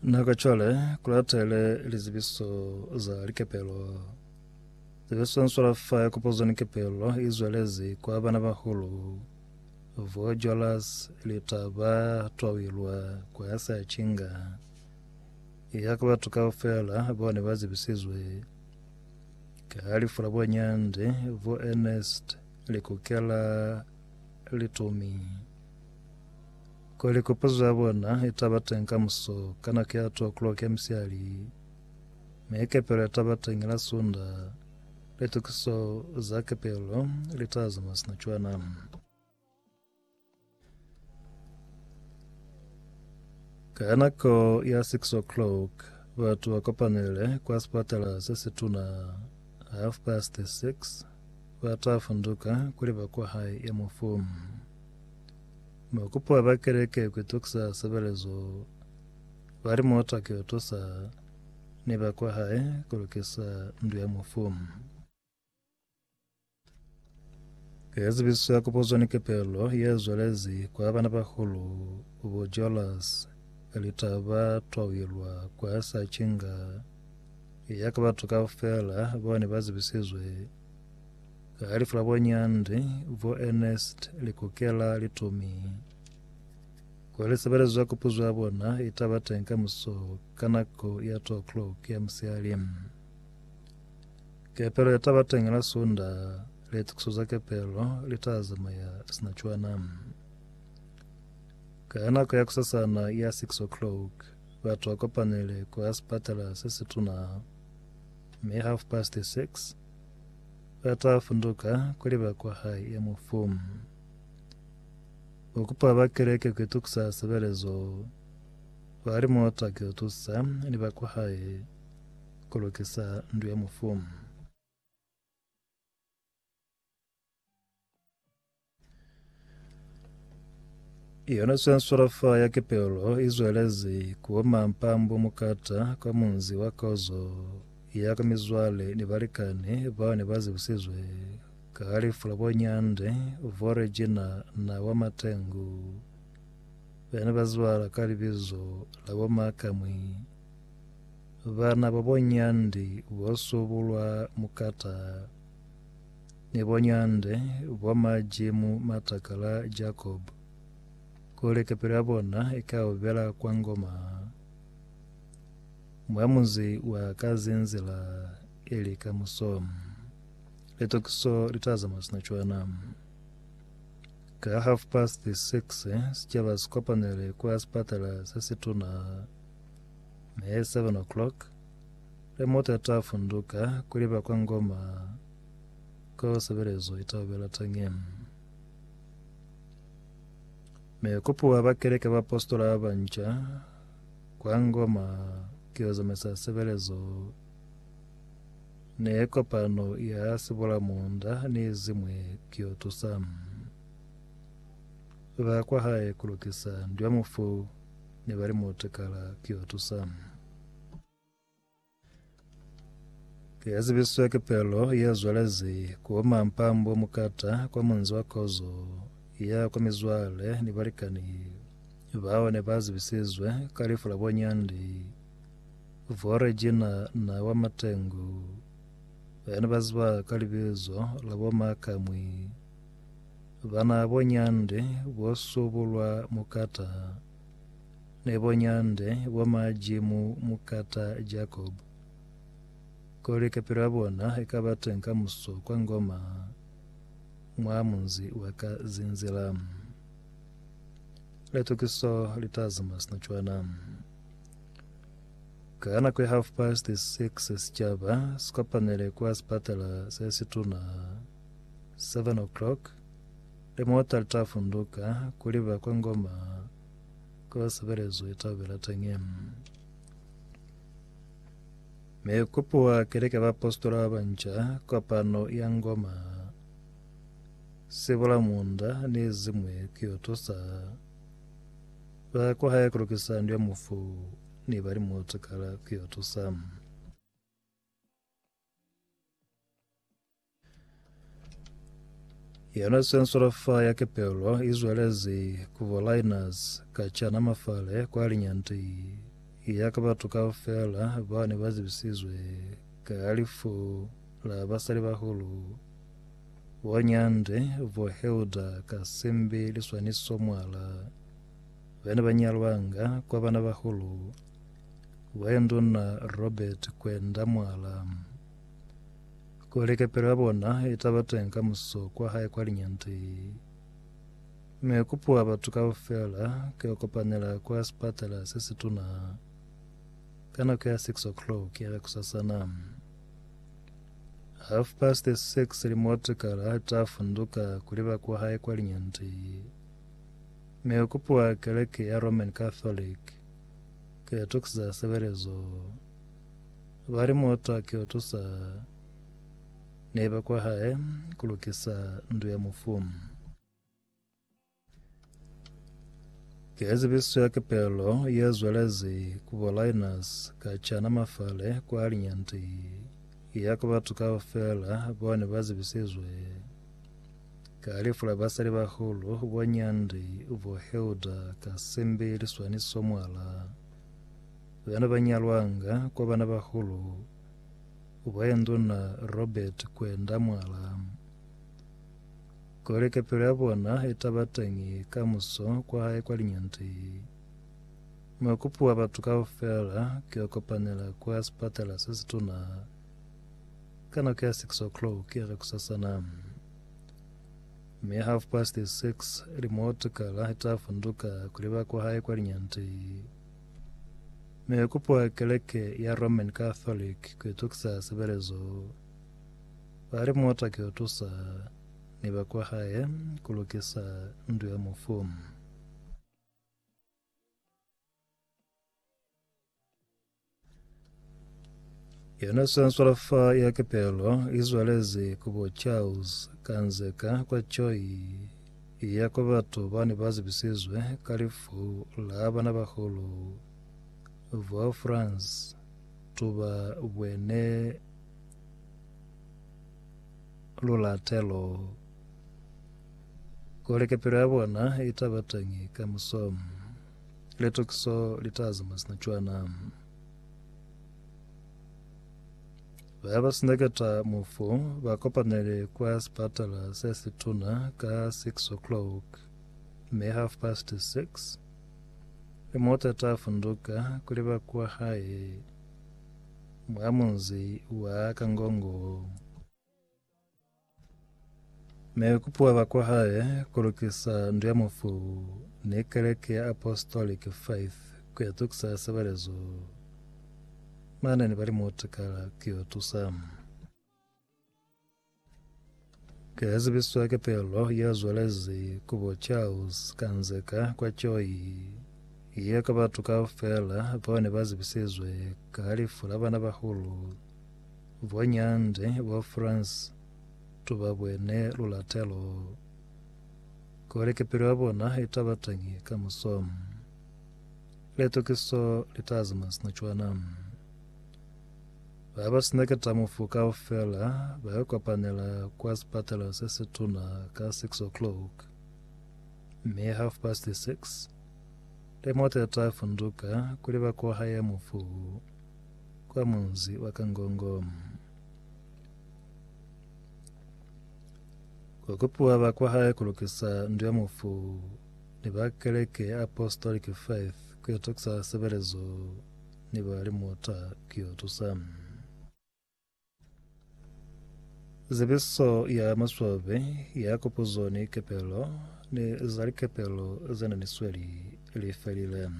Nako cwale kulatele lizibiso za likepelo zebeswanswela fa ya kopozo ni kepelo izwelezi kwa bana bahulu vo jolas litaba twawilwa kwa ya sa chinga ya ka batu kaufela bone ba zibisizwe ka lifu la bonyande vo Ernest likukela litumi Kweli kupuzo ya bona itaba teñi ka muso ka nako ya 2 o'clock ya misihali, mi kepelo yataba teñi la Sunda. Litukiso za kepelo litala za mwa sina cwana. Ka nako ya 6 o'clock, batu ba kopanele kwa sipatala se situna. Half past 6, ba ta funduka kuli ba kwa hae ya mufu. Ba kupa ba ba keleke ku itukisa sebelezo ba li muta ki yo tusa ni ba kwa hae ku lukisa ndu ya mufu. Ka zibiso ya kupuzo ni kepelo ye zwelezi kwa bana ba hulu bo Jolas ka lita ba twauyelwa kwa sa cinga ya ka batu kaufela bao ne ba zibisizwe Ka lifu la bonyandi, bo Ernest Likokela li tumi kwa lisebelezo za kupuzo ya bona i ta ba teng kamuso ka nako ya 2 o'clock ya musihali. Kepelo ye ta ba teng la Sunda, litokiso za kepelo li ta zamaya sina cwana. Ka nako ya kusasana ya 6 o'clock, batu ba kopanile kwa sipatela se situna. Mi half past six ba ta funduka kuli ba kwa hae ya mufu. Ba kupa ba keleke ku itukusa sebelezo. Ba li mota ki utusa ni ba kwa hae ku lukisa ndu ya mufu. Yona swanswalafa ya kepelo izwelezi kuoma mpambo mukata kwa munzi wa kozo ya ka mizwale ni balikani bao ne ba zibusizwe ka halifu la bonyande vo Regina na wa Matengu bene ba zibala ka libizo la bo Makamwi bana ba bonyandi bo subulwa mukata ni bonyande bwa majimu matakala Jakobo, kuli kepelo ya bona ika ubela kwa ngoma mwa muzi wa ka zinzila ili ka muso. Litokiso li t'a zamaya sina cwana. Ka half past six, sicaba si kopanele kwa sipatala se situna, me seven o'clock, Le muta ta funduka kuli ba kwa Ngoma ko sebelezo itaubela tangi. Me kupuwa ba keleke ba apostola ba banca kwa Ngoma kio zamaisa sebelezo ne kopano ya sibola munda ni zimwe kio tusa ba kwa hae kulukisa ndwa mufu ne bali mutekala kio tusa. Ke zibiswa ke pelo ye zwalezi ku mampambo mukata kwa munzi wa kozo ya kwa mizwale ni balikani bao ne ba zibisizwe ka lifu la bonyandi vo Regina na wa Matengu ba ne ba ziba ka libizo la bo Makamwi bana bonyandi bo subulwa mukata ne bo nyande bo maji mu mukata Jacob, kuli kapilo ya bona ikaba teng kamuso kwa Ngoma mwa munzi wa ka Zinzila. Litukiso li ta zama sina cwana. Ka nako ya half past six sicaba sikopanele kwa sipatala se situna 7 o'clock. Limuta li ta funduka kuli ba kwa Ngoma ko sebelezwe tabela teñi. Me kupuwa keleke ba apostola ba banca kopano ya Ngoma sibula munda ni zimwe kiyo tusa ba kwa hae kulukisa ndu ya mufu ni ba limuta kala kiyo tusa. Yona sensola fa ya kepelo izwelezi kubo liners ka chana mafale kwa linyanti ya ka batu ka fela ba ne ba zibisizwe ka alifu la basali bahulu bo nyande bo heuda ka simbi liswaniso mwala bene ba nyalwanga kwa bana bahulu Waenduna Robert kwenda mwala. Kuli kepelo ya bona itaba teng ka muso kwa hae kwa linyante. Mi kupuwa batu kaufela keo kopanela kwa sipatala se situna ka nako ya 6 o'clock ya kusasana. Half past 6 limotekala ita funduka kuliba kwa hae kwa linyante. Mi kupuwa keleke ya Roman Catholic. Ki atuki za sebelezo ba li muta ki utusa ne ba kwa hae ku lukisa ndu ya mufu. Ki ezibiso ya kepelo ye zwelezi ku bo Linus ka cana mafale kwa linyanti ya ku batu kaufela bo ne ba zibisizwe. Ka lifu la basalibahulu, bo Nyandi, bo Hilda ka Simbi liswaniso mwala bana ba nyalwanga kwa bana bahulu ba ye nduna Robert kwenda mwala kuli kepelo ya bona itaba teñi ka muso kwa hae kwa Linyandi. Mukupi wa batu kaufela ki yo kopanela kwa sipatela se situna. Ka nako ya six o'clock ya kakusasana, mi half past six, limoto kala ta funduka kuli ba kwa hae kwa linyante. Mi ho kupwa keleke ya Roman Catholic ku itukisa sebelezo. Ba limota ki utusa ni ba kwa hae ku lukisa ndu ya mufu. Yona Chancellor fa ya Kepelo izwalezi ku bo Charles Kanzeka kwa Choi ya kwa batu bani ba zibisizwe ka lifu la bana bahulu bo France tuba bwene lulatelo kuli kepelo ya bona itabatangi ka musomo. Litokiso litaza masina cwana. Baya ba sineketa mufu ba kopanele kwa sipatala se situna ka 6 o'clock me half past 6 le mota ta funduka kuli ba kwa hae mwa munzi wa Kangongo. Ne ku puaba kwa hae ku lukisa ndu ya mufu ni keleke ya Apostolic Faith ku ya tukisa sebelezo. Mane ni ba li mutikala ku yo tusa. Ke ya zibiswa ke pelo ya zwalezi ku bo Charles Kanzeka kwa Choi ye ka batu kaufela bao ne ba zibisizwe ka lifu la bana bahulu Bonyande bwa France tu ba bwene lulatelo kuli ki pilu ya bona i ta ba teñi kamuso. Litukiso li ta zama sina cwana. Ba ba sina ketamufu kaufela ba yo kopanela kwa sipatela se si tuna ka 6 o'clock, mi half past 6 limota ya ta funduka kuli ba ko haya mufu. kwa munzi wa Kangongo. Kwa kupiwa ba kwa hae ku lukisa ndu ya mufu ni ba keleke ya Apostolic Faith ku itokisa sebelezo ni ba limuta ku yo tusa. Zebiso ya maswabe ya kupuzo ni kepelo ni za likepelo ze na ni sweli li felile.